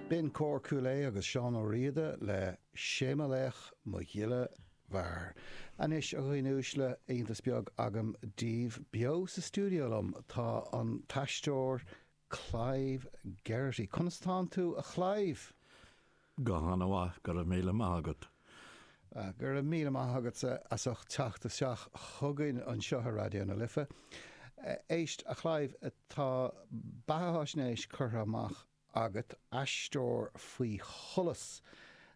B'in Cór Chúil Aodh agus Seán Ó Riada le 'Sé Mo Laoch Mo Ghile Mhear'. Anois, a dhaoine uaisle, iontas beag agam daoibh. Beo sa stiúideo liom tá an t-aisteoir Clive Geraghty. Conas atánn tú, a Clive? Go hana mhaith, go raibh míle maith agat. Go raibh míle maith agatsa as ucht teacht isteach chugainn anseo ar Raidió na Life. Éist, a Clive, tá beatháisnéis curtha amach agat, Aisteoir faoi Sholas.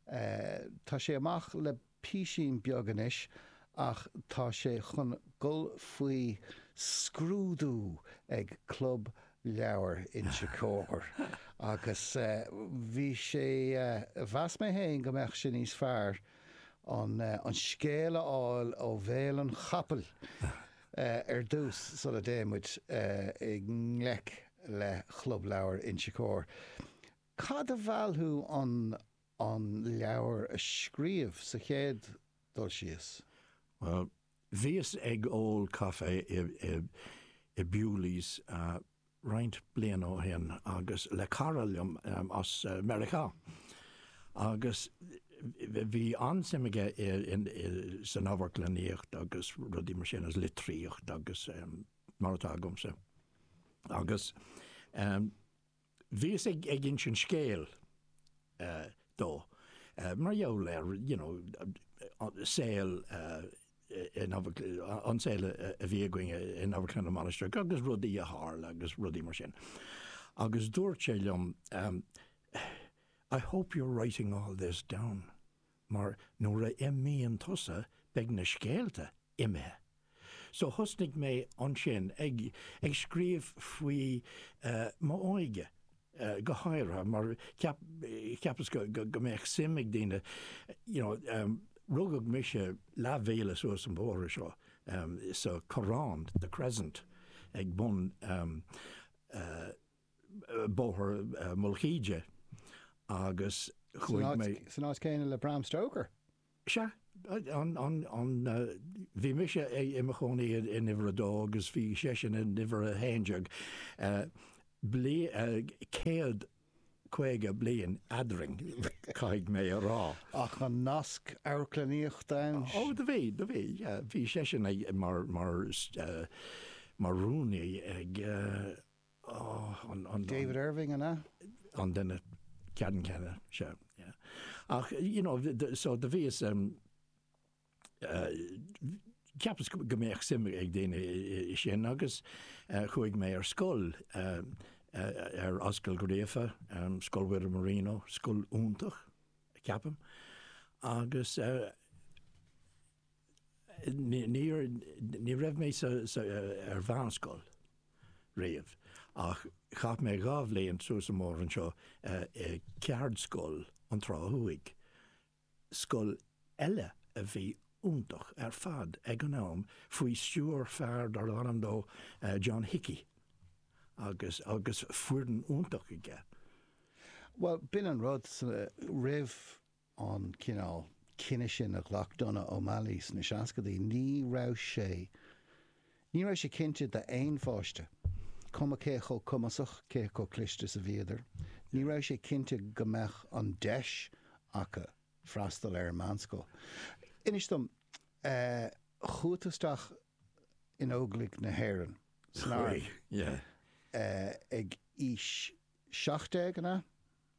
Tá sé amach le. písín beag anois ach tá sé chun dhul faoi scrúdú ag Club Leabhar Inse Chóir agus bhí sé, mheas mé fhéin go mbeadh sé níos fearr an scéal a fháil ó bhéal an chapaill ar dtús sula dtéann muid i ngleic le Club Leabhar Inse Chóir. Cad a mheall thú an. an leabhar a scríobh sa chéad dul síos? Bhuel, bhíos ag ól caife i Bewley's roinnt blianta ó shin agus le cara liom as Meiriceá agus bhí an-suim aige san amharclannaíocht agus rudaí mar sin, litríocht agus mar atá agamsa agus Bhíos ag insint scéil dó mar gheall ar you know saol in an saol a bhí againn in Amharclann na Mainistreach agus rudaí a tharla agus rudaí mar sin agus dúirt sé liom I hope you're writing all this down. mar nuair a imíonn tusa beidh na scéalta imithe. So thosnaigh mé ansin ag ag scríobh faoi m'óige go háirithe mar cheapas go go mbeadh suim ag daoine you know rugadh mise leathmhíle suas an bóthar seo sa Chorrán, The Crescent, ag bun eh, Bóthar Mhullach Íde agus chuaigh mé. San áit céanna le Bram Stoker? Sea. Bhí mise i mo chónaí in uimhir a dó agus bhí seisean in uimhir a haon déag. Céad caoga bliain eadrainn, caithfidh mé a rá. Ach an nasc amharclannaíochta ann? Ó, do bhí, do bhí. Bhí seisean mar rúnaí ag. David Irving an ea? an duine ceannann céanna, sea ach you know so do bhíos um, uh, cheapas go mbeadh suim ag daoine ansin agus uh, chuaigh mé ar scoil uh, uh, ar Ascaill Ghríofa, um, Scoil Mhuire Marino, scoil iontach, ceapaim agus uh, Níor, ní raibh mé sa, sa, ar mheánscoil riamh ach chaith mé dhá bhliain suas an bóthar anseo i gceardscoil na Trá Thuaidh, scoil eile a bhí iontach ar fad ag an am faoi stiúir fear darb ainm dó John Hickey agus, agus foireann iontach aige. Bhuel b'in an rud, roimh an cineál cinneadh sin a ghlac Donogh O'Malley sna seascadaí, ní raibh sé, ní raibh sé cinnte d'aon pháiste, cuma cé chomh cumasach, cé chomh cliste is a bhíodar, ní raibh sé cinnte go mbeadh an deis acu freastal ar an meánscoil. Inis dom, chuaigh tú isteach in Óglaigh na hÉireann, san arm, ag aois seacht déag, an ea?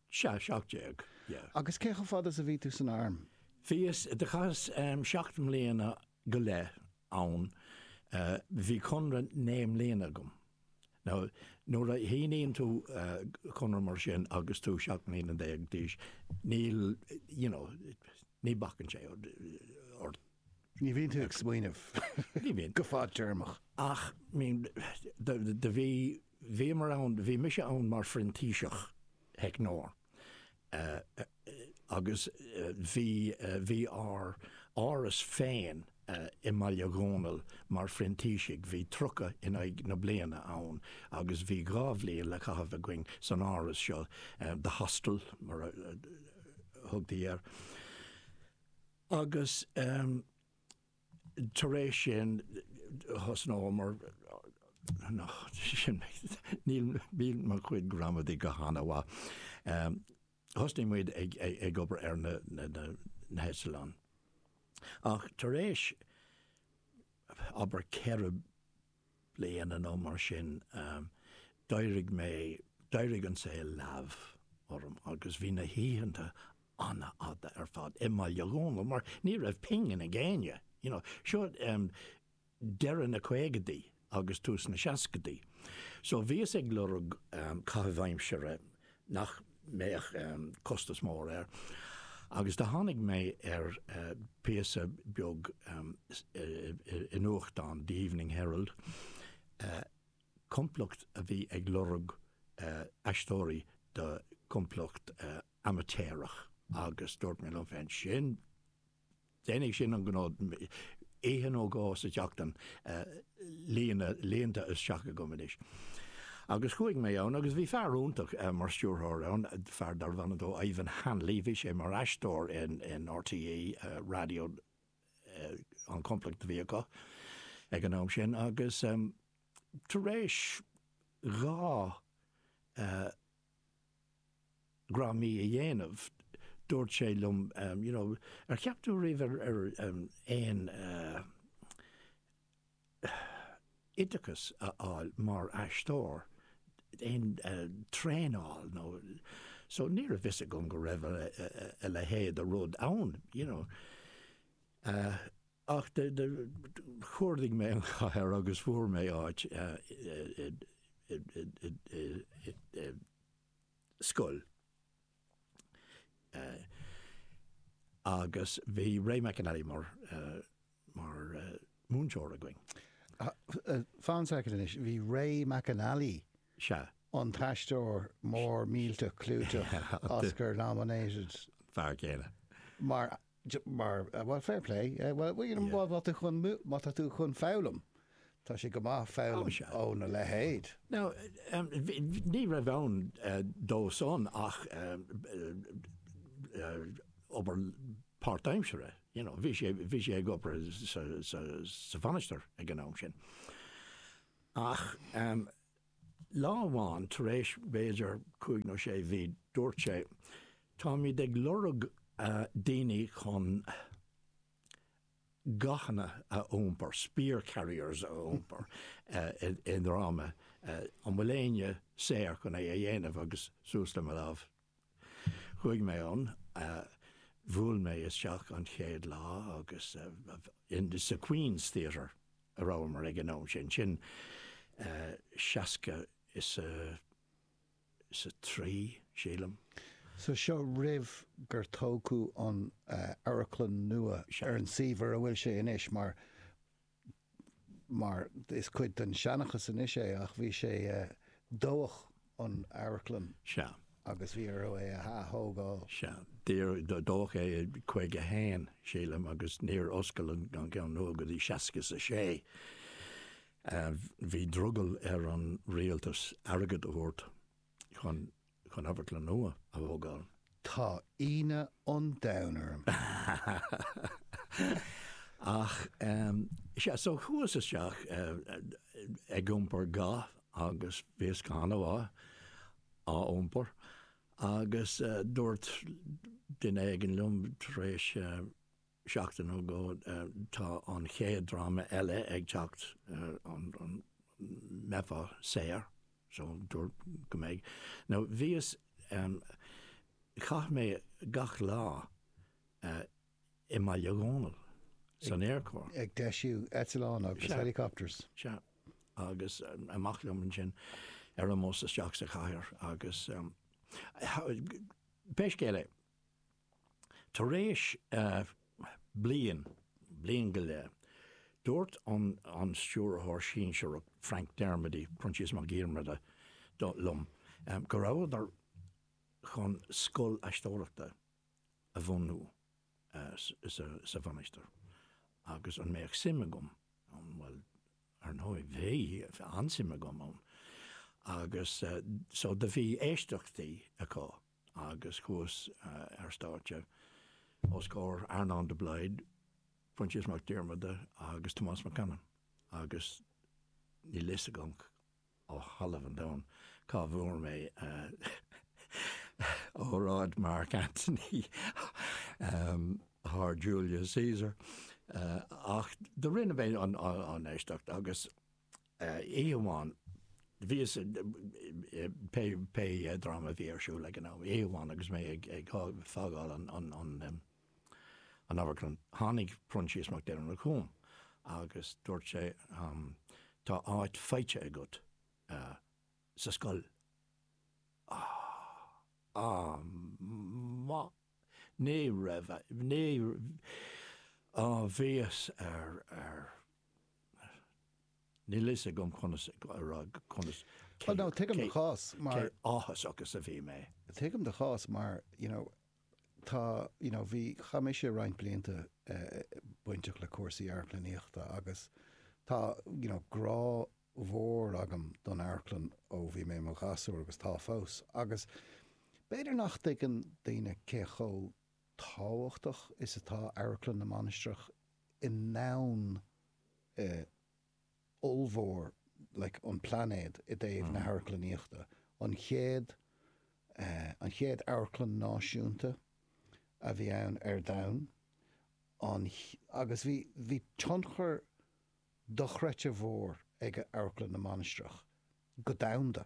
Sea, seacht déag, yeah. Agus cé chomh fada 's a bhí tú san Arm? Bhíos, do chaitheas seacht mbliana go leith ann, bhí conradh naoi mbliana agam. Now, nuair a shíníonn tú conradh mar sin agus tú seacht mbliana déag d'aois, níl, you know, ní bacann sé ort. Ní bhíonn tú ag smaoineamh go fad-téarmach. Ach, I mean, do bhí. Bhíomar ann, bhí mise ann mar phrintíseach teicneora agus bhí, bhí ár áras féin i mBaile Dhónaill mar phrintísigh, bhí tríocha in aghaidh na bliana ann agus bhí dhá bhliain le caitheamh againn san áras seo, The Hostel mar a thugtaí air agus. tar éis sin thosnóamar níl níl mo chuid gramadaí go han-mhaith. Thosnaigh muid ag ag obair ar na na heitleáin. Ach tar éis abair ceithre bliana nó mar sin d'éirigh mé, d'éirigh an saol leamh orm agus bhí na hoícheanta an-fhada ar fad i mBaile Dhónaill mar ní raibh pingin ag éinne, you know, seo deireadh na caogadaí agus tús na seascadaí. So bhíos ag lorg caitheamh aimsire nach mbeadh costas mór air agus do tháinig mé ar phíosa beag i nuachtán, The Evening Herald, complacht a bhí ag lorg aisteoirí do chomplacht amaitéarach agus dúirt mé liom féin, sin Déanfaidh sin an gnó. Oíche nó dhó sa tseachtain líonta isteach agam anois. Agus chuaigh mé ann agus bhí fear iontach mar stiúrthóir ann, fear darbh ainm do Ivan Hanley, bhí sé mar aisteoir in RTÉ Radio, an chomplacht a bhí acu ag an am sin, agus tar éis dhá dhráma a dhéanamh, dúirt sé liom you know ar cheap tú riamh ar aon oideachas a fháil mar aisteoir, aon traenáil nó so ní raibh fhios agam go raibh a leithéid de rud ann you know. Ach do chuardaigh mé an chathair agus fuair mé áit i scoil agus bhí Ray McAnally mar múinteoir againn. Fan a soicind anois, bhí Ray McAnally, an t-aisteoir mór millteach clúiteach Oscar nominated, an fear céanna, mar Mar, bhuel, fair play. Bhuel, you know, má tá tú chun, má tá tú chun foghlaim, tá sé go maith foghlaim óna leithéid. Now, ní raibh ann dósan ach obair páirtaimsire, you know, bhí sé, bhí sé ag obair sa, sa, sa Mhainistir ag an am sin. Ach. Lá amháin tar éis b'fhéidir cúig nó sé mhí dúirt sé, táimid ag lorg daoine chun gathanna a iompar, spear carriers a iompar i ndráma, an bhfuil éinne saor chun é a dhéanamh agus suas le mo lámh Chuaigh mé ann, bhuail mé isteach an chéad lá agus sa Queen's Theatre a bhíomar ag an am sin, sin seasca is a, is a trí, sílim. So seo roimh gur tógadh an amharclann nua ar an suíomh ar a bhfuil sé anois mar, mar is cuid den seanchas anois é, ach bhí sé, dódh an amharclann Sea. agus bhí orthu é a ath-thógáil. Sea. Dódh é i caoga haon, sílim, agus níor oscail an ceann nua go dtí seasca 's a sé. Bhí drogall ar an Rialtas airgead a thabhairt chun chun Amharclann nua a thógáil. Tá ionadh an domhain orm. Ach sea, so chuas isteach ag iompar ga agus bhíos go han-mhaith á iompar agus dúirt duine éigin liom tar éis seachtain nó dhó, tá an chéad dráma eile ag teacht an mbeifeá saor so dúirt go mbeidh nó bhíos caith mé gach lá i mBaile Dhónaill san aerchór. ag deisiú eitleán agus helicopters. Sea. Agus amach liom ansin ar an mbus isteach sa chathair agus pé scéal é, Tar éis bliain, bliain go leith, dúirt an Stiúrthóir Sinsearach, Frank Dermody, Proinsias Mac Diarmada, liom go rabhadar chun scoil aisteoireachta a bhunú sa Mhainistir agus an mbeadh suim agam ann. Bhuel, ar ndóigh, bhí, bhí an-suim agam ann. Agus so do bhí éisteachtaí acu. agus chuas ar stáitse os comhair Earnán de Blaghd, Proinsias Mac Diarmada agus Tomás Mac Anna agus níl fhios agam ó thalamh an domhain cá bhfuair mé óráid Mark Antony thar Julius Caesar ach do rinne mé an éisteacht agus oíche amháin bhíos, pé dráma a bhí ar siúl ag an am, oíche amháin agus mé ag fágáil an amharclann tháinig Proinsias Mac Diarmada chugam agus dúirt sé tá áit faighte agat sa scoil. Ní raibh, ní raibh, bhíos ar. Níl a fhios agam conas a rá conas, cé, cé áthasach is a bhí mé. Tuigim do chás mar, you know, tá, you know, bhí, chaith mise roinnt blianta bainteach le cúrsaí amharclannaíochta agus tá, you know, grá mhór agam don amharclann ó bhí mé i mo ghasúr agus tá fós agus b'fhéidir nach dtuigeann daoine cé chomh tábhachtach is atá Amharclann na Mainistreach i ndomhan ollmhór like an plainéad i dtaobh na hamharclannaíochta. An chéad an chéad amharclann náisiúnta a bhí ann ar domhan. Agus bhí bhí tionchar dochreidte mhór ag Amharclann na Mainistreach go domhanda.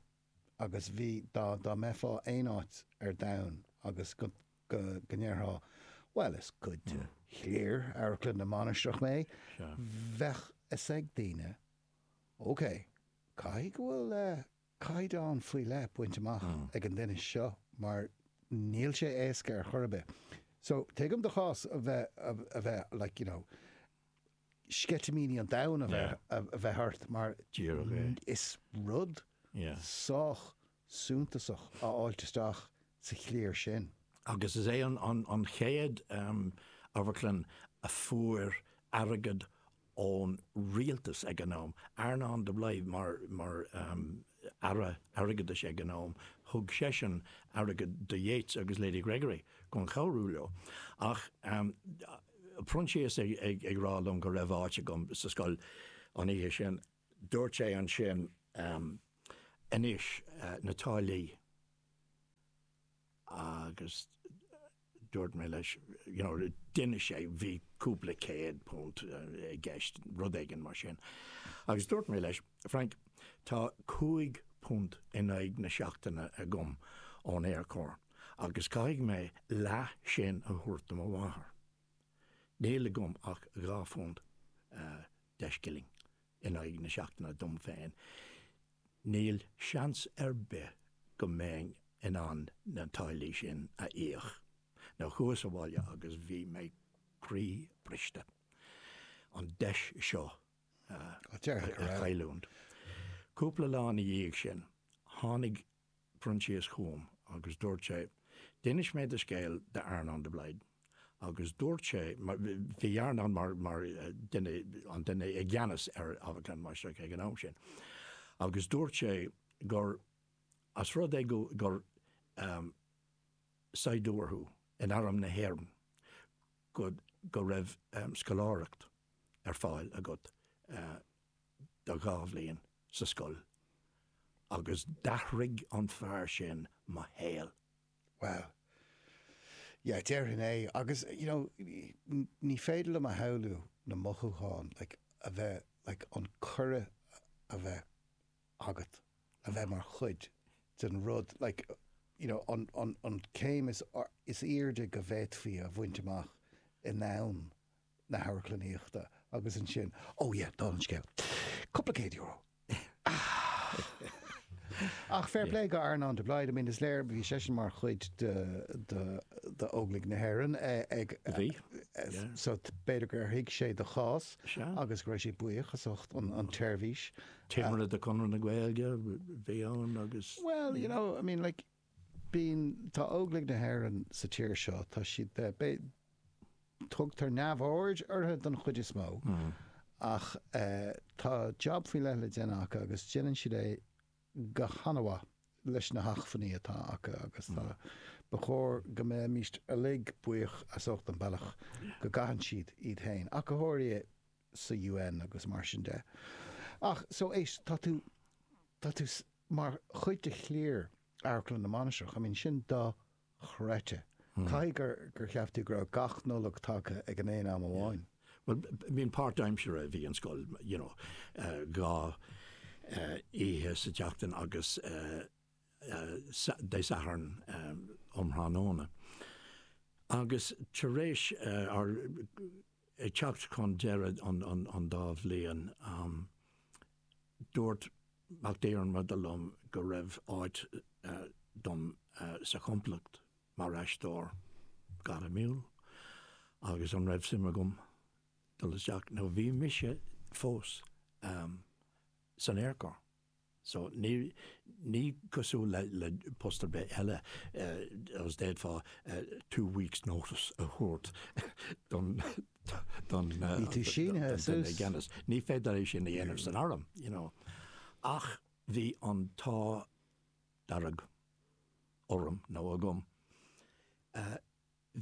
agus bhí, dá mbeifeá aon áit ar domhan agus go ndéarfá bhuel is cuid de chliar Amharclann na Mainistreach mé, bheadh 'fhios ag daoine ok, caithfidh go bhfuil caighdeán faoi leith bainte amach ag an duine seo mar níl sé éasca ar chor ar bith. So tuigim do chás a bheith like you know. sceitimíní an domhain a bheith ort mar is rud sách suntasach a fháilt isteach sa chliar sin. Agus is é an chéad amharclann a fuair airgead ón rialtas ag an am. Earnán de Blaghd mar Aire Airgeadais ag an am, thug seisean airgead do Yeats agus Lady Gregory chun cabhrú leo. Proinsias ag rá liom go raibh áit agam sa scoil an oíche sin. Dúirt sé ansin, Anois, na táillí. Agus dúirt mé leis, you know, d'inis sé, bhí cúpla céad punt i gceist, rud éigin mar sin. Agus dúirt mé leis, Frank, tá cúig phunt in aghaidh na seachtaine agam ón Aerchór. agus caithfidh mé leath sin a thabhairt do mo mháthair. Níl agam ach dhá phunt deich scilling in aghaidh na seachtaine dom féin. Níl seans ar bith go mbeinn in ann na táillí sin a íoc nó chuas abhaile agus bhí mé croíbhriste an deis seo a chailliúint. Cúpla lá ina dhiaidh sin tháinig Proinsias chugam agus dúirt sé, D'inis mé do scéal d'Earnán de Blaghd agus dúirt sé, bhí Earnán mar duine, an duine i gceannas ar Amharclann na Mainistreach ag an am sin, agus dúirt sé gur as rud é gur saighdiúir thú in arm na hÉireann go raibh scoláireacht ar fáil agat. do dhá bhliain sa scoil agus d'athraigh an fear sin mo shaol. Bhuel. Yeah, déarfainn é. Agus, you know, ní féidir liom a shamhlú na mothúcháin, like, a bheith, like, an cuireadh a bheith agat a bheith mar chuid den rud, like, you know, an, an, an céim is airde go bhféadfaí a bhaint amach in am. na hamharclannaíochta agus ansin, oh yeah, dála an scéil, cúpla céad euro. Ach fair play go Earnán de Blaghd, I mean is léir, bhí seisean mar chuid d'Óglaigh na hÉireann ag, so b'fhéidir gur thuig sé do chás agus go raibh sé buíoch as ucht an tseirbhís. Timire de Chonradh na Gaeilge bhí ann agus. Well, you know, I mean like. I mean, tá Óglaigh na hÉireann sa tír seo, tá siad, b'fhé, b'fhé, tugtar neamhaird orthu don chuid is mó, ach eh tá job faoi leith le déanamh acu agus déanann siad é go han-mhaith leis na hachmhainní atá acu agus tá, ba chóir go mbeidh muid uilig buíoch as ucht an bealach go gcaitheann siad iad féin. Ach go háirithe, sa UN agus mar sin de. Ach, so, éist, tá tú, tá tú mar chuid de chliar Amharclann na Mainistreach, I mean, sin do chreite. Caithfidh gur, gur cheap tú go raibh gach Nollaig tagtha ag an aon am amháin. Bhuel, I mean, páirtaimseartha a bhí an scoil, you know, dhá oíche sa tseachtain agus Dé Sathairn um thráthnóna. Agus tar éis ár, Ag teacht chun deireadh an dá bhliain, dúirt Mac Diarmada liom go raibh áit dom sa chomplacht mar aisteoir gairmiúil agus an raibh suim agam dul isteach. Now bhí mise fós san Aer Corps. So, ní, ní cosúil le, le post ar bith eile agus d'fhéadfá two weeks notice a thabhairt don, don, Bhí tú sínithe don duine i suas. gceannas. Ní féidir é sin a dhéanamh san arm, you know. Ach bhí an t-ádh dearg orm, nó agam,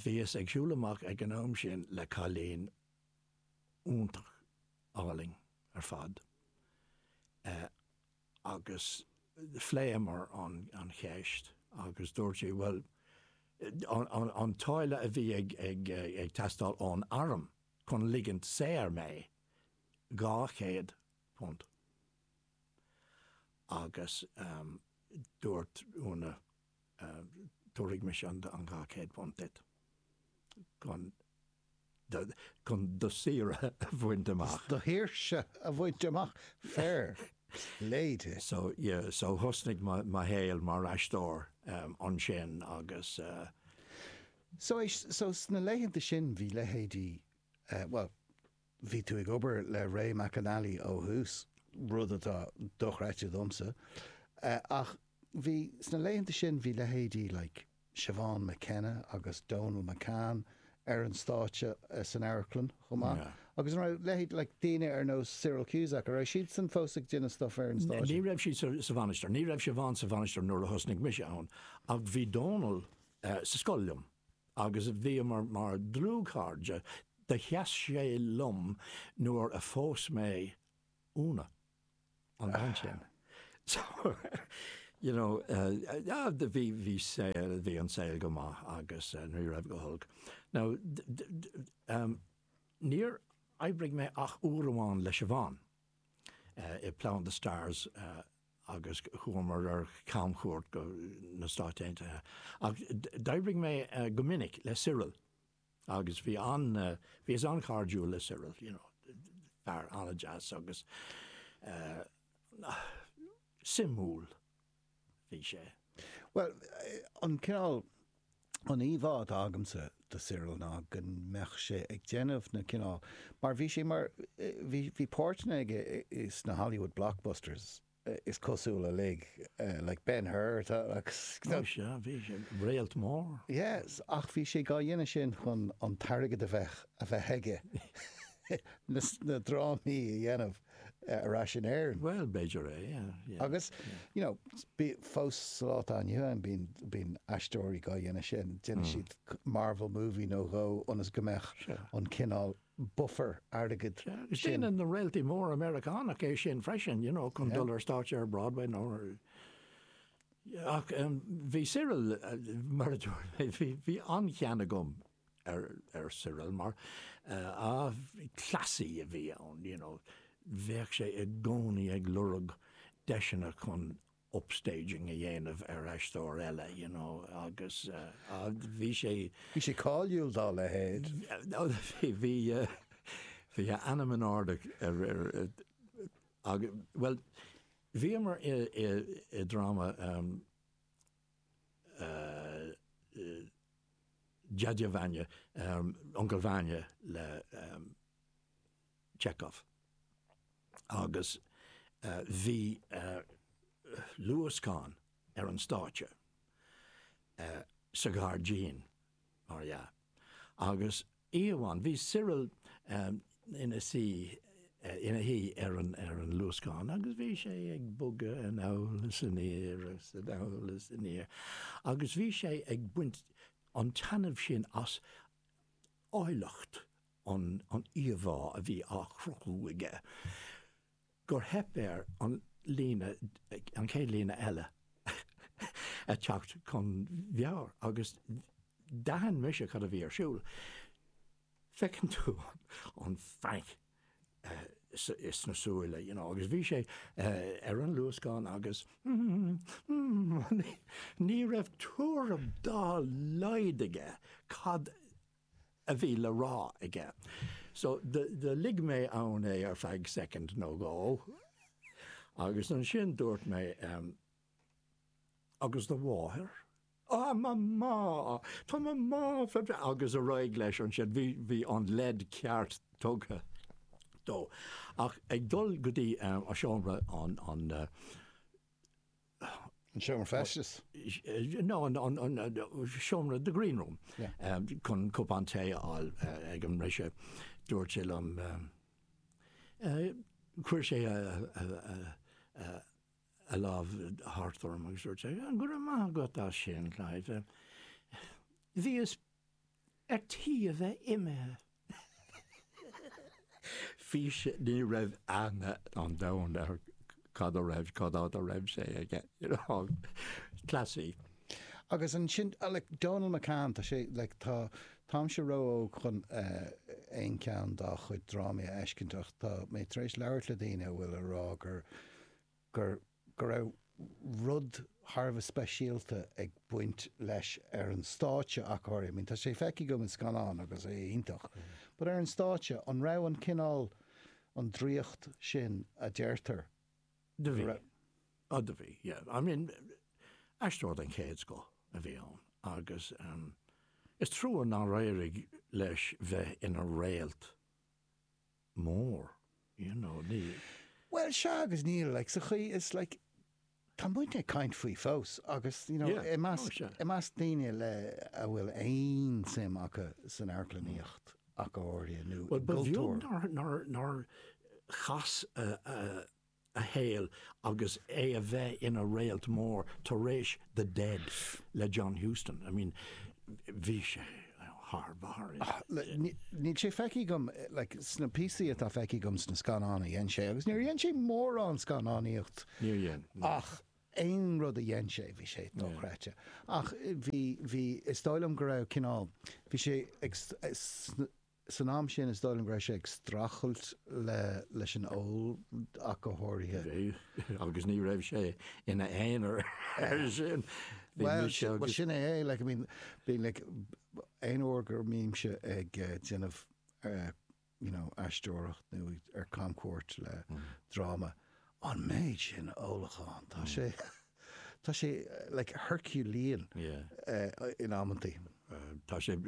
Bhíos ag siúl amach ag an am sin le cailín iontach álainn ar fad eh agus phléamar an an cheist agus dúirt sí bhuel an an an táille a bhí ag ag ag teastáil ón arm chun ligint saor mé dhá chéad punt agus ehm dúirt Úna tabharfaidh mise an dhá chéad phunt duit chun do shaoirse a bhaint amach. Do shaoirse a bhaint amach? Fair play di. So yeah, so thosnaigh mo shaol mar aisteoir ansin agus. So sna laethanta sin bhí leithéidí, bhuel, Bhí tú ag obair le Ray McAnally ó thús, rud atá dochreidte domsa, ach bhí, sna laethanta sin, bhí leithéidí like Siobhán McKenna agus Donal McCann ar an stáitse san amharclann chomh maith agus an raibh leithéid like daoine ar nós Cyril Cusack, an raibh siadsan fós ag déanamh stuff ar an stáitse? Ní raibh siad sa Mhainistir, ní raibh Siobhán sa Mhainistir nuair a thosnaigh mise ann ach bhí Donal sa scoil liom. agus bhíomar mar dlúthchairde, do sheas sé liom nuair a phós mé Úna, an bhean sin, so, you know, ah, bhí, bhí saol, bhí an saol go maith agus ní raibh go holc. Now, níor oibrigh mé ach uair amháin le Siobhán. i Plough and the Stars agus chuamar ar camchuairt go na Stáit Aontaithe. Ach d'oibrigh mé go minic le Cyril agus bhí an, bhíos an-chairdiúil le Cyril, you know, fear an-deas agus suimiúil. bhí sé. Bhuel, an cineál, an íomhá atá agamsa de Cyril ná go mbeadh sé ag déanamh na cineál, mar bhí sé mar, bhí, bhí páirteanna aige sna Hollywood blockbusters is cosúil uilig, like Ben Hur agus. Ó sea, bhí sé, réalt mór. Yes, ach bhí sé dhá dhéanamh sin chun an t-airgead a bheith, a bheith aige na drámaí a dhéanamh. ar ais in Éirinn. Bhuel, b'fhéidir é, yeah. Agus, you know, bíonn fós sa lá atá inniu ann, bíonn aisteoirí dhá dhéanamh sin, déanann siad Marvel movie nó dhó ionas go mbeadh an cineál buffer airgid sin. Agus déanann na réaltaí móra Meiriceánach é sin freisin, you know, chun dul ar stáitse ar Broadway nó ar, ach bhí Cyril, mar a dúirt mé, bhí an-chion agam ar Cyril mar cleasaí a bhí ann, you know, bheadh sé i gcónaí ag lorg deiseanna chun upstaging a dhéanamh ar aisteoir eile, you know, agus bhí sé. Bhí sé cáiliúil dá leithéid. Bhí a ainm in airde, bhuel, bhíomar i dráma, Dyadya Vanya, uncail Vanya le Chekhov. Agus bhí luascán ar an stáitse sa ghairdín, mar dhea. Agus oíche amháin, bhí Cyril ina suí, ina shuí ar an, ar an luascán agus bhí sé ag bogadh anall is aniar is anall is aniar agus bhí sé ag baint an-taitneamh as áilleacht an, an íomhá a bhí á chruthú aige. gur theip air an líne, an chéad líne eile a teacht chun meabhair agus d'aithin mise cad a bhí ar siúl. Feiceann tú an panic sna súile, you know, agus bhí sé ar an luascán agus ní raibh tuairim dá laghad aige cad a bhí le rá aige. So do lig mé ann é ar feadh soicind nó dhó agus ansin dúirt mé, Agus do mháthair? Á, mo mháthair! Tá mo mháthair go breá! agus ar aghaidh leis ansin. Bhí an leid ceart tugtha dó. Ach ag dul go dtí seomra an An seomra feistis? No, an seomra, the green room, chun cupán tae a fháil ag an mbriseadh. Dúirt sé liom, chuir sé a lámh thart orm agus dúirt sé, Go raibh maith agat as sin, Clive. Bhíos ar tí a bheith imithe. Fís, ní raibh aithne an domhain air cad a raibh, cad á do raibh sé aige, you know. Cleasaí. Agus ansin, like, Dónall McCann, tá sé, like, tá, táimse ró-óg chun aon cheann dá chuid drámaí a fheiscint ach tá mé tar éis labhairt le daoine a bhfuil a rá gur, gur, go raibh rud thar a bheith speisialta ag baint leis ar an stáitse ach oiread. I mean, tá sé feicthe agam in scannáin agus é iontach, but ar an stáitse, an raibh an cineál, an draíocht sin a deirtear go raibh? Do bhí. Oh, do bhí, yeah. I mean, aisteoir den chéad scoth a bhí ann agus is trua nár éirigh leis bheith ina réalt. mór, you know, ní. Bhuel, sea agus níl, like, sa chaoi is, like, tá muidne ag caint faoi fós agus, you know, i measc, i measc daoine le, a bhfuil aon tsuim acu san amharclannaíocht ach go háirithe nó i gcultúr. Bhuel, ba bheag nár, nár, nár chas a. a shaoil agus é a bheith ina réalt mór tar éis The Dead le John Huston. I mean bhí sé thar barr. Níl sé feicthe agam like sna píosaí atá feicthe agam sna scannáin a dhein sé agus níor dhein sé mórán scannánaíocht ach aon rud a dhein sé bhí sé dochreidte ach bhí bhí is dóigh liom go raibh cineál bhí sé ag An t-am sin is dóigh liom go raibh sé ag strachailt leis an ól ach go háirithe. Bhí, agus ní raibh sé ina aonar ar sin. Bhuel, sin é é, like, I mean, bíonn, like, aon uair go mbímse ag déanamh, you know, aisteoireacht nó ar camchuairt le dráma, an méid sin ólacháin, tá sé, tá sé, like, herculean in amantaí. Tá sé.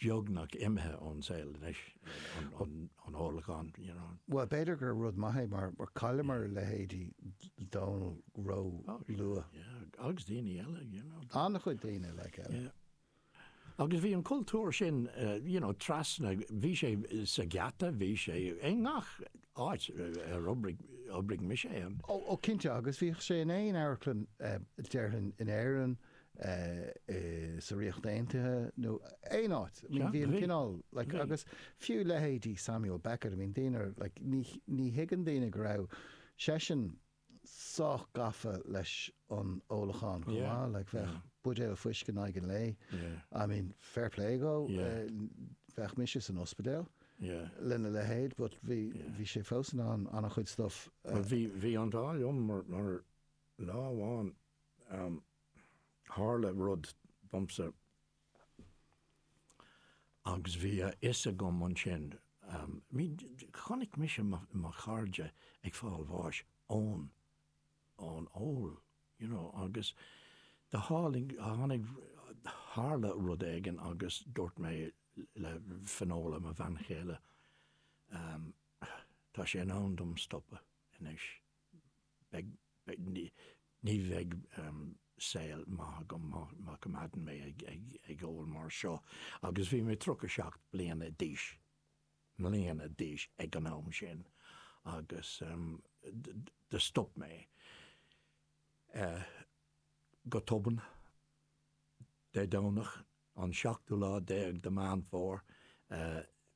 beagnach imithe ón saol anois, an ólachán, you know. Bhuel, b'fhéidir gur rud maith é mar chailleamar a leithéidí Dónall róluath. Yeah, agus daoine eile, you know. An-chuid daoine, like, eile. Yeah. Agus bhí an cultúr sin, you know, trasna, bhí sé sa Gheata, bhí sé i ngach áit ar oibrigh mise ann. Oh, oh, cinnte, agus bhíodh sé in aon amharclann, déarfainn, in Éirinn, sa Ríocht Aontaithe nó aon áit. I mean, bhí an cineál, like, agus fiú leithéidí Samuel Beckett, I mean, daoine, like, ní, ní thuigeann daoine go raibh seisean sách gafa leis an ólachán chomh maith, like, bheadh buidéal fuisce in aghaidh an lae, I mean, fair play dhó, bheadh mise san ospidéal lena leithéid but bhí, bhí sé fós in ann an-chuid stuff a. Bhí, bhí an t-ádh liom mar, mar lá amháin, Tharla rud domsa agus bhí a fhios agam ansin, chonaic mise mo chairde ag fáil bháis ón ón ól, you know, agus tháinig tharla rud éigin agus dúirt mé le Finola, mo bhean chéile, tá sé in am dom stopadh anois. ní bheidh saol maith agam má choimeádann mé ag ól mar seo agus bhí mé 37 bliana d'aois, mbliana d'aois ag an am sin agus do stop mé go tobann Dé Domhnach an seachtú lá déag de Mheán Fómhair,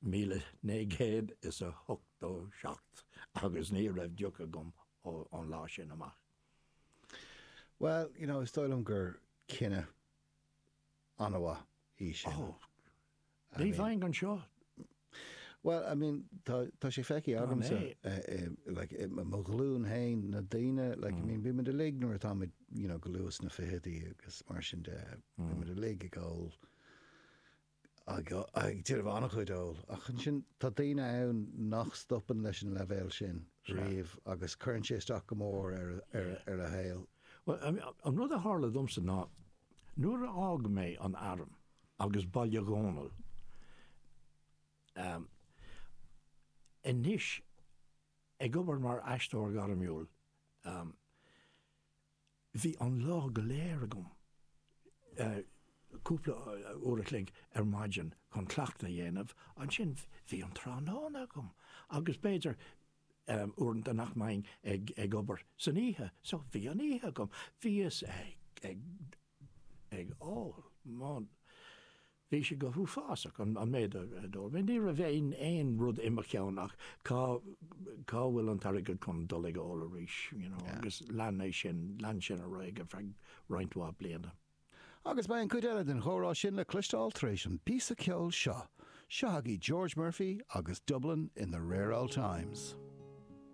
míle naoi gcéad is a hochtó seacht, agus ní raibh deoch agam ón lá sin amach. Bhuel, you know, is dóigh liom gur cinneadh an-mhaith í sin. Oh, ní bheinn anseo. Bhuel, I mean, tá sé feicthe agamsa, like, mo ghlúin fhéin, na daoine, like, I mean, bímid uilig nuair atáimid, you know, go luath sna ficheadaí agus mar sin de, bímid uilig ag ól, ag déanamh an-chuid óil, ach ansin tá daoine ann nach stopann leis an leibhéal sin riamh agus cuireann sé isteach go mór ar a saol. Bhuel, I mean, an rud a tharla domsa ná nuair a d'fhág mé an arm, agus bail ó Dhia orm. Ehm. anois ag obair mar aisteoir gairmiúil, ehm. bhí an lá go léir agam, eh. cúpla uair a chloig ar maidin chun cleachtadh a dhéanamh, ansin bhí an tráthnóna agam agus b'fhéidir, ehm. uaireanta nach mbeinn ag obair san oíche so bhí an oíche agam. Bhíos ag. ag ól. Bhun. Bhí sé go h-uafásach, an méid a d'ól mé. Ní raibh aon rud i mo cheann ach cá bhfuil an t-airgead chun dul ag ól arís, you know, agus lean é sin, lean sin ar aghaidh ar feadh roinnt mhaith bliana. Agus beidh an chuid eile den chomhrá sin le cloisteáil tar éis an píosa ceoil seo. Seo agaí George Murphy agus Dublin in the Rare Old Times.